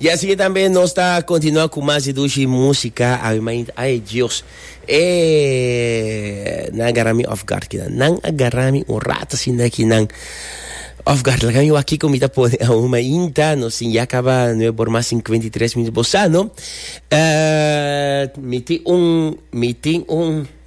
Y asina tambe nos ta continua cu mas di dushi musica, awe m'a inta, ay Dios, eh, nan a garra mi off guard kinan, nan a garra mi un rato asina kinan off guard, laga mi wak kico mi ta pone aún, m'a inta, nos tin ya caba nueve bor mas cincuenta y tres minutos, bossa no, eh, mi tin un, mi tin un.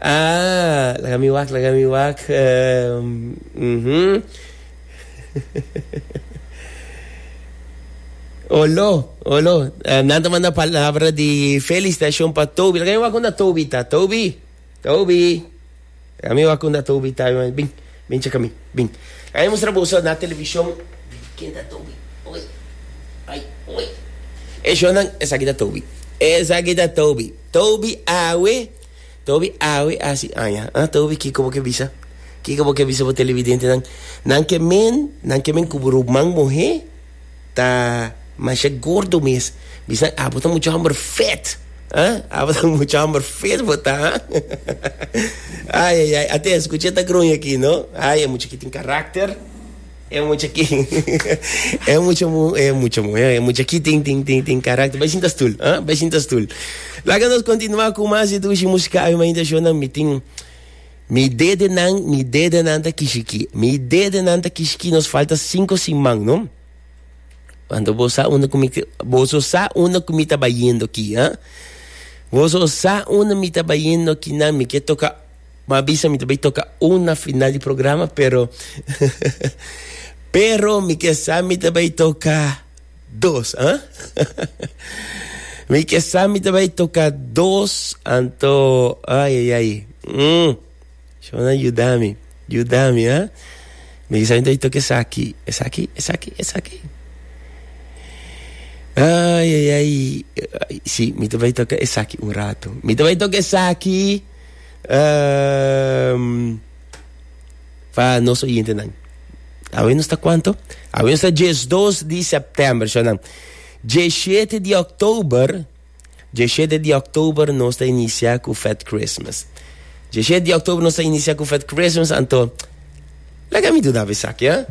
Aah laga mi wak laga mi wak uhmm olo olo nan ta manda palabra di felicitacion pa Toby laga mi wak unda Toby ta Toby Toby laga mi wak unda Toby ta bin bin cheka mi bin laga mi mustra boso na television bin ken ta Toby oi ai oi e shownan esaki ta Toby esaki ta Toby Toby awe. Ta obi awe asi aña, ah, ta obi kiko bo ke bisa, kiko bo ke bisa bo televidentenan, nan ke men, nan ke men ku bo ruman muhé ta masha gordo mes, bisnan abo ta muchu hòmber fèt, ah, abo ta muchu hòmber fèt bo ta, ah, ai, ai, ai, atenshon, skucha e ta gruña aki, no, ai, e muchu aki tin karakter. E mucha ki, e mucha mu, e mucha mu, e mucha ki tin, tin, tin, tin karakter. Bai sinta stul, ah, bai sinta stul. Laga nos kontinuá ku mas di dushi musika avi manifestashonnan. Mi tin, mi dedenan, mi dedenan ta kishi ki, mi dedenan ta kishi ki. Nos falta sinku siman, no? Wanta bo sa unda ku mi, boso sa unda ku mi ta bayendo ki, ah? Boso sa unda mi ta bayendo ki nan, mi ke toka. M'a bisa mi ta bay toca un na final di programa, pero pero mi ke sa mi ta bay toca dos, ah? mi ke sa mi ta bay toca dos, anto ay ay ay. Mm. Shona yudami, yudami, ah? Mi ke sa mi ta bay toca esaki, esaki, esaki, esaki. Ay ay ay, si mi ta bay toca esaki un rato. Mi ta bay toca esaki. Um, pa nos oyentenan. Awe nos ta cuanto? Awe nos ta 12 di september, sonan. 17 di oktober, 17 di oktober nos ta inicia cu Fat Christmas. 17 di oktober nos ta inicia cu Fat Christmas, anto, laga mi duna besaki, eh?